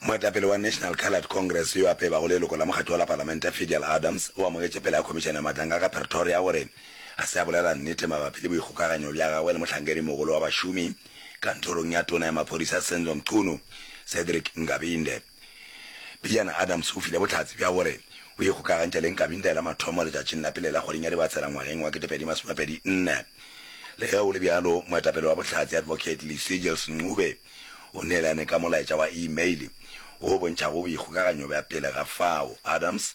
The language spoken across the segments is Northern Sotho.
Moetapele wa National Coloured Congress yo a pebago leloko la mokgatlo wa la palamente Fidel Adams o amogetše pela ya khomišene ya matanga ka Pretoria gore ga se a bolela nnete mabapi le boikgokaganyo bja gagwe le mohlankedi-mogolo wa bašomi kantorong ya tona ya maphodisa Senzo Mchunu, Cedric Ngabinde. Bidiana Adams o file bohlatse bja gore o ikgokagantšha le Nkabinda e la mathomo letšatšing la pele la kgweding ya Dibatsela ngwageng wa 2024. Le ge go le bjalo, moetapele wa Bohlatse, Advocate Licigils Ncube, o neelane ka molaetša wa e-mail wo o bontšhago boikgokaganyo bja pele ga fao. Adams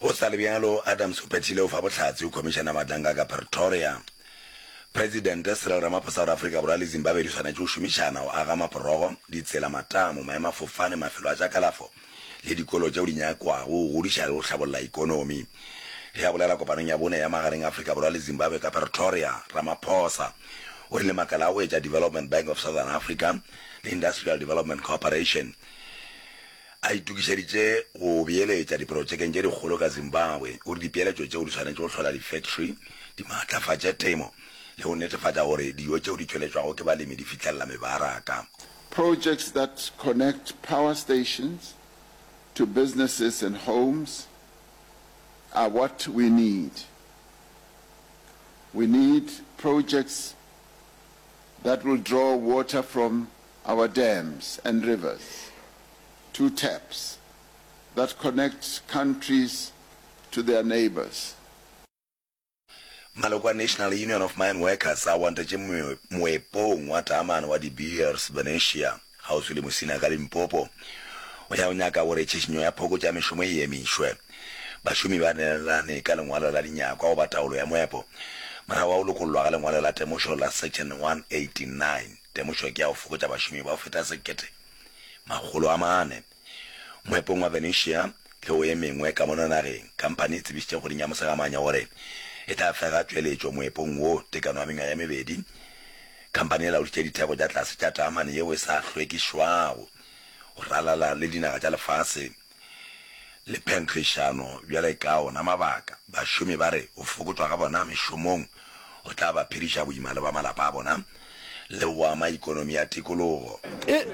Go sa le bjalo, Adams o phethile go fa bohlatse go Khomišene ya Matlanka ka Pretoria. Presidente Cyril Ramaphosa o re Afrika Borwa le Zimbabwe di swanetše go šomišana go aga maporogo, ditsela, matamo, maemafofane, mafelo a tša kalafo le dikolo tšeo di nyakwago go godiša le go hlabolla ekonomi. Ge a bolela kopanong ya bone ya magareng a Afrika Borwa le Zimbabwe ka Pretoria, Ramaphosa o rile makala a go etša Development Bank of Southern Africa le Industrial Development Cooperation, A itokišeditše go beeletša diprotšekeng tše dikgolo ka Zimbabwe. O re dipeeletšo tšeo di swanetše go hlola difektri, di maatlafatše temo le go netefatša gore dijo tšeo di tšweletšwago ke balemi di fihlelela mebaraka. Projects that connect power stations to businesses and homes are what we need. We need projects that will draw water from Our dams and rivers, two taps that connect countries to their neighbours. Maloko a National Union of Mine Workers a wantetše moepong wa taamane wa De Beers, Venetia, kgauswi le Musina ka Limpopo, go ya go nyaka gore tšhišinyo ya phokotšo ya mešomo e emišwe. Bašomi ba neelane ka lengwalo la dinyakwa goba taolo ya moepo morago ga go lokollwa ga lengwalo la temošo la Section 189. temošo ke ya go fokotša bašomi ba go feta sekete makgolo a mane moepong wa Venetia le go e mengwe ka mono nageng. Kampane e tsebišitše kgweding ya Mosegamanya gore e tla fega tšweletšo moepong wo tekano ya mengwaga ye mebedi. Kampane e laodišitše ditheko tša tlase tša taamane yeo e sa hlwekišwago go ralala le dinaga tša lefase. le phenkgišano bjale ka ona mabaka. Bašomi ba re go fokotšwa ga bona mešomong go tla ba phediša boima le ba malapa a bona le go ama ikonomi ya tikologo.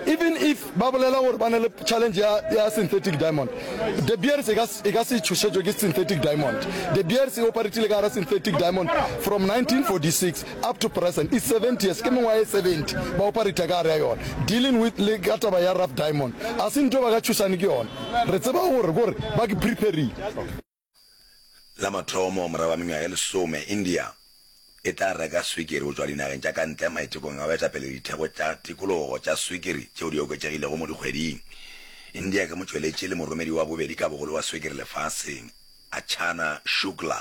Even if ba bolela gore ba na le challenge ya ya synthetic diamond, De Beers e ka e ka se tšhošetšwe ke synthetic diamond. De Beers e oparetile ka gare synthetic diamond from 1946. up to present is 70 years ke mengwaga e 70 ba oparita ka gare ya yona dealing with le ka taba ya rough diamond a se nto ba ka tšhusane ke yona re tseba gore gore ba ke preparing La mathomo morago ga mengwaga e lesome, India e tla reka swikiri go tšwa dinageng tša ka ntle maitekong a go eta pele ditheko tša tikologo tša swikiri tšeo di oketšegilego mo dikgweding. India ke motšweletši le moromedi wa bobedi ka bogolo wa swikiri lefaseng, Archana Shukla,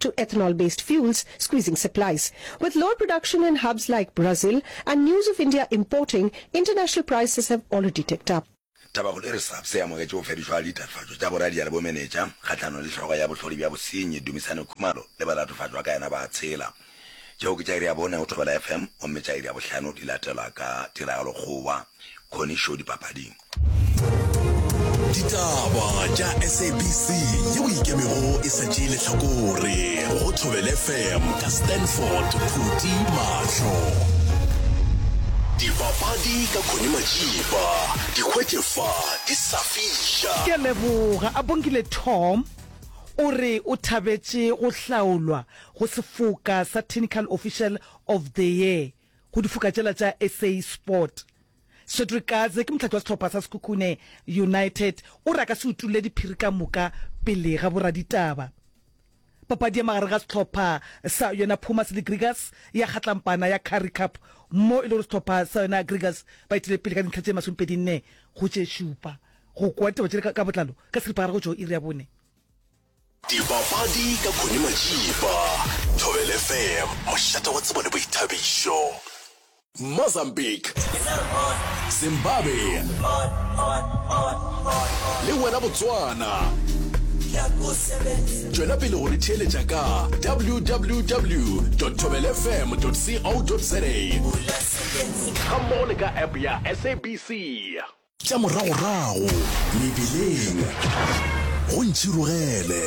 to ethanol-based fuels squeezing supplies. With lower production in hubs like Brazil and news of India importing, international prices have already ticked up. Tabakgolo e re SAPS e amogetše go fedišwa ga ditatofatšo tša boradia le bomenetša kgahlanong le hlogo ya bohlodi bja bosenyi Dumisani Khumalo le balatofatšo ba ka yena ba tshela. Tšeo ke tša iri ya bone go Thobela FM gomme tša iri ya bohlano di latelwa ka Tiragalo Kgowa, Connie Show dipapading. ditaba tša sabc yeo ikemego e sa tšee letlhakore go thobele fm ka stanford phuti mahlo dipapadi ka khone majiba dikgwetšefa di sa fiša ke leboga a bonkile tom o re o thabetše go hlaolwa go sefoka sa technical official of the year go difoka tšela tša sa sport Cedric Kaze ke mohlakiwa sehlopha sa Sekhukhune United o re a ka se utolle diphiri ka moka pele ga boraditaba. Papadi ya magareng ga sehlopha sa yona Pumas le Grigas ya kgatlampana ya Currie Cup mo e le gore sehlopha sa yona Grigas ba itile pele ka dintlha tše masomepedi nne go tše šupa. Go kwa ditaba tšele ka botlalo ka seripagare go tšwa go iri ya bone. Dibapadi ka Connie Majiba, Thobela FM, mošate wa tsebo le boithabišo. Mozambique, Zimbabwe le wena Botswana. Tšwela pele go re theeletša ka www.thobelafm.co.za gammogo le ka app ya SABC. Tša moragorago mebileng go ntšhirogele.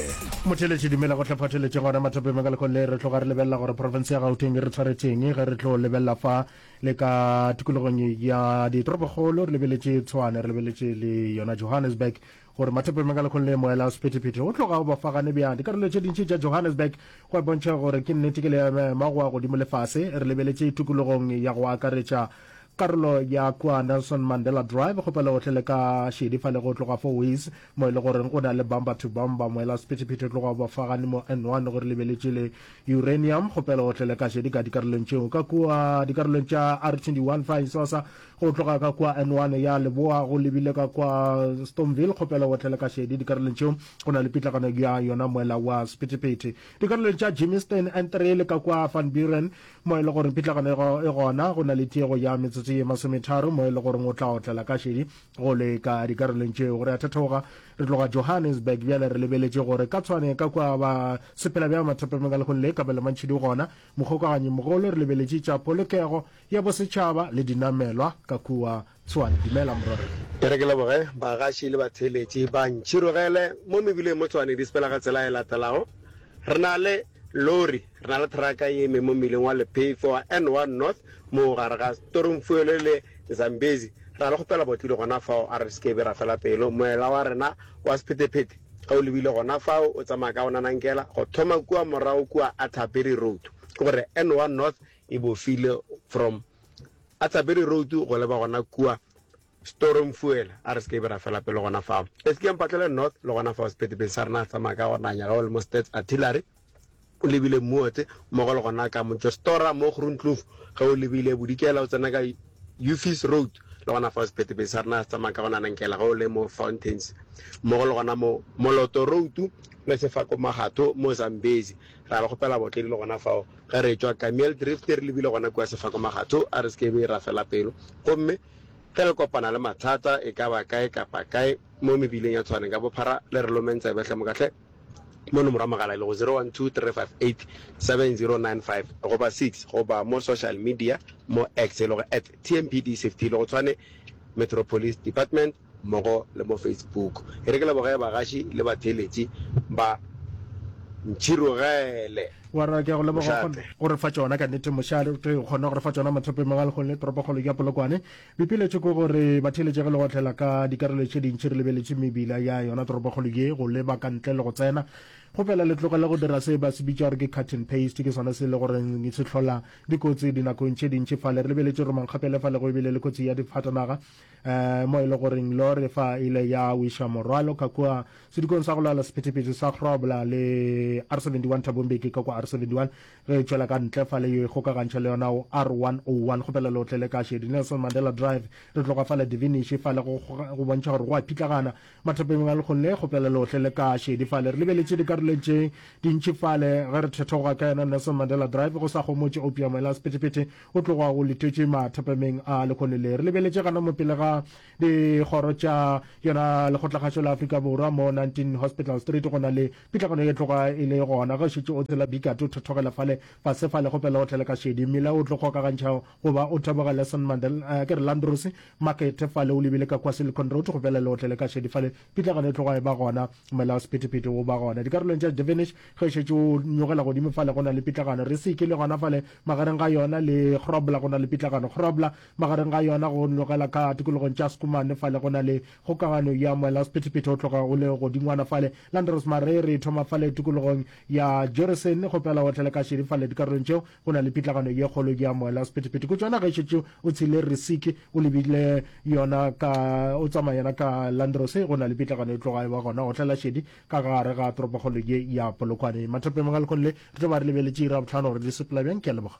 Motheeletši dumela go hlaphatheletše gona mathapeng a ka lekong le re tloga re lebelela gore profense ya gauteng e re tshwaretseng ge re tlo lebelela fa le ka tikologong ya ditoropokgolo re lebeletše tshwane re lebeletše le yona johannesburg gore mathopeng ka lekgong le moela o sephethephethe o tloga o bafagane bjang dikarolo tše dintši tša Johannesburg go a bontšha gore ke nnete ke leemaema go a godimo lefase re lebeletše tokologong ya go akaretša karolo ya kua Nelson Mandela Drive go pele gohle le ka šedi fa le go tloga fo Waze mo e le goreng o na le bumper to bumper moela o sephethephethe o tloga o bafagane mo N1 gore lebeletše le uranium go pele gohle le ka šedi ka dikarolong tšeo ka kua dikarolong tša R21 fa Isosa Go tloga ka kua N one ya leboa go lebile ka kua Stoneville, kgopela o otlele ka šedi dikarolong tšeo go na le pitlagano ya yona moela wa sephethephethe. Dikarolong tša Germiston, N three le ka kua Van Buren mo e le goreng pitlagano e gona go na le tiego ya metsotso ye masometharo mo e le goreng o tla otlela ka šedi go leka dikarolong tšeo. Re a thethooga re tloga Johannesburg bjale re lebeletše gore ka tshwane ka kua ba sephelabjamathapameng ka lehong le, Kabelo Mantšhidi o gona Mokgokaganyimogolo re lebeletše tša polokego ya bosetšhaba le dinamelwa ka kua Tshwane. Dumela Morero. E re ke leboge bagaši le batheeletši ba ntšhirogele mo mebileng mo Tshwane di sepela ka tsela e latelago, Re na le lori, re na le thraka e eme mo mmileng wa lephefo wa N one North mo gare ga Stormfuele le Zambezi, re na le kgopela botlodi gona fao a re se ke be ra fela pelo moela wa rena wa sephetephete. Ge o lebile gona fao, o tsamaya ka go nanankela go thoma kua morago kua Atterbury Road. Ke gore N one North e bofile from Atterbury Road go leba gona kua Storing Fuel. A re se ke be ra fela pelo gona fao. Eskieng Patlele North le gona fao sephetepeng sa rena re tsamaya ka go nanya ge o le mo Stats Artillery. O lebile Mmuote mmogo le gona ka Motšostora mo Groenkloof, ge o lebile Bodikela o tsena ka Uffie's Road, le gona fao sephethephethe sa rena se tsamaya ka gona Nankela ge o le mo Fountains, mmogo le gona mo Moloto Road le Sefako Magatho mo Zambezi. Ra le kgopela baotledi le gona fao ge re etšwa Kameel-Drift re lebile gona kua Sefako Magatho a re se ke be ra fela pelo gomme ge le kopana le mathata e ka ba kae kapa kae mo mebileng ya Tshwane ka bophara le re lomeng tsebe hle moka hle. mo nomoro ya mogala e lego 0123587095 goba 6 goba mo social media mo X e lego at tmpdcft e lego tshwane Metropolis Department mmogo le mo Facebook. E re ke leboge bagaši le batheeletši ba Ntšhirogele. Wa re ke a go leboga go re fa tšona ka nnete mošate o kgona go re fa tšona Mathopeng Mangwalkgole toropokgolo ya Polokwane Pipiletšo ke gore batheeletšege le go otlela ka dikarolo tše dintši re lebeletše mebila ya yona toropokgolo ye go leba ka ntle le go tsena. Go fela le tlogele go dira se ba se bitša gore ke cut and paste, ke sona se e le gore se hlola dikotsi dinakong tše dintši. Fale re lebeletše gore mankgapele fale go e bile le kotsi ya difatanaga um mo e le goreng lore fa e ile ya wiša morwalo ka kua sedikong sa go lwala sephethephethe sa Grobler le R71 Thabo Mbeki ka kua R71. Re tšwela ka ntle fa le yo ikgokagantšha le yona o R101, kgopela le otlele ka Shedi Nelson Mandela Drive. Re tloga fa le Diviniši fa le go go bontšha gore go a phitlagana. Mathapeng a lekgong le, kgopela le otlele ka Shedi fa le. Re lebeletše dikarolong tše dintši fa le ge re thetoga ka yona Nelson Mandela Drive, go sa gomotše opiamo ela sephethephethe o tloga o litetše mathapameng a lekgone le. Re lebeletše gana mo pele ga dikgoro tša yona Lekgotlakgašo la Afrika Borwa mo 19 Hospital Street go na le Pitlagano e tloga e le gona ge o šetše o tsela Bikati, o thothogela fale fase fale go pela o tlele ka šedi mmila o tlo kgokagantšha goba o teboge Lesson Mandela, eh, ke re Landros Market fale o lebile ka kwa Silicon Road go pela le o tlele ka šedi fale. Pitlagano e tloga e ba gona, mola wa sephethephethe o ba gona dikarolong tša Devenish. Ge o šetše o nyogela godimo fale go na le pitlagano Risiki le gona fale magareng ga yona le Grobler go na le pitlagano Grobler magareng ga yona go nyogela ka tikologong tša Schoeman fale go na le Kgokagano ya moela sephethephethe o tloga o le godingwana fale. Landros Mare re thoma fale tikologong ya Joresen go pela otlele ka šedi fale dikarolong tšeo go na le pitlagano ye kgolo ya moela sephethephethe. Kutšo yona ge e šetše o tshile Risiki o lebile yona ka o tsamaya yona ka Landros go na le pitlagano e tloga e ba gona otlela šedi ka gare ga toropokgolo ye ya Polokwane. Mathapeng Magalkong le re tlo ba re lebeletše iri ya bohlano gore di sepela bjang. Ke a leboga.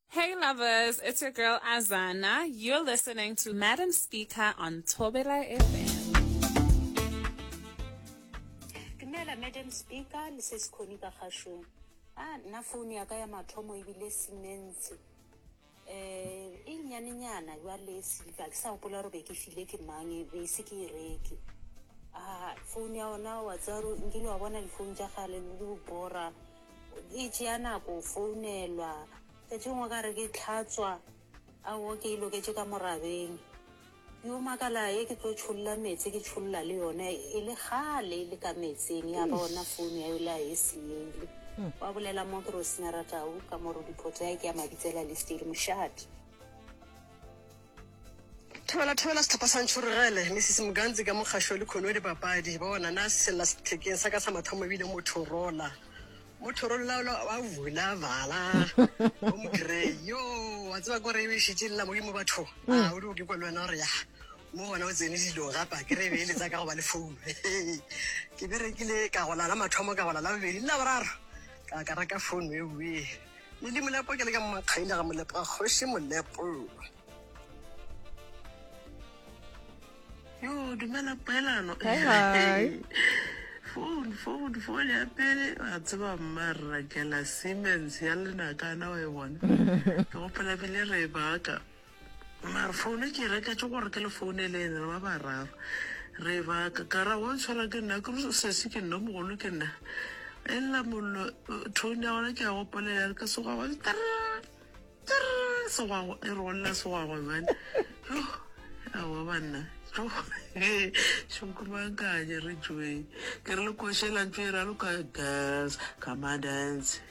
Hey lovers, it's your girl Azana. You're listening to Madam Speaker on Thobela FM. Dumela Madam Speaker, le se sekhoni ka kgashong. Ah, nna phone ya ka ya mathomo ebile simense. Eh, e nyanenyana jwale e silva ke sa gopola gore be ke file ke mang e be se ke e reke a ah, phone ya ona wa tsaro nkile wa bona difounu tša gale le bora e tšea nako go founelwa, tše dingwe ka re ke tlhatswa, awo ke e loketše ka morabeng. Yo makala ye ke tlo tšholla meetse ke tšholla le yone e le kgale e le ka meetseng ya ba ona founu ya yole a e seele. Wa bolela mo ke Rosinara Tau ka mo Rudiphoto ya ke ya Mabitsela Listeri Moshate. Thobela thobela setlhopha sa Ntšhorogele, Mrs Muganzi ka mokgašo le Khonwe dipapadi. Bona na sella sethekeng sa ka sa mathomo ebile Motorola. Motorola ola wa vula vala. O mogrey. Yo, wa tseba gore e bešitše lela modimo batho. Ah, o di o ke kwa le wena gore ya. Mo gona o tsene dilong gape a kere e be e letsa ka go ba le founu. Ke berekile ka go lala mathomo ka go lala bobedi le laboraro. Ka ka reka founu e uwe. Ledi Molepo ke le ka mmakgaile ga Molepo a kgoši Molepo. Yo dumela poelano. Hi hi. Phone phone phone ya pele a tseba mmarra ke la Siemens ya lenakana wa e bona. Ke gopola bile re e baka. Mare founo ke e reketše gore ke le founeleng, re ba bararo. Re ba ka, ka ra, Wa ntshwara ke nna. Ke re, Sesi, ke nna o mogolo, ke nna. Ella mollo, tone ya gona ke ya gopolela, ya re ka segwagwa, Trrrr! Trrrr! Segwagwa, e re go lla segwagwa bjale. Yoh! Aowa banna, yoh! Hee, šo nkumakanya, re tšweng. Ke re le koša ela ntšo e raloka, Girls, come and dance!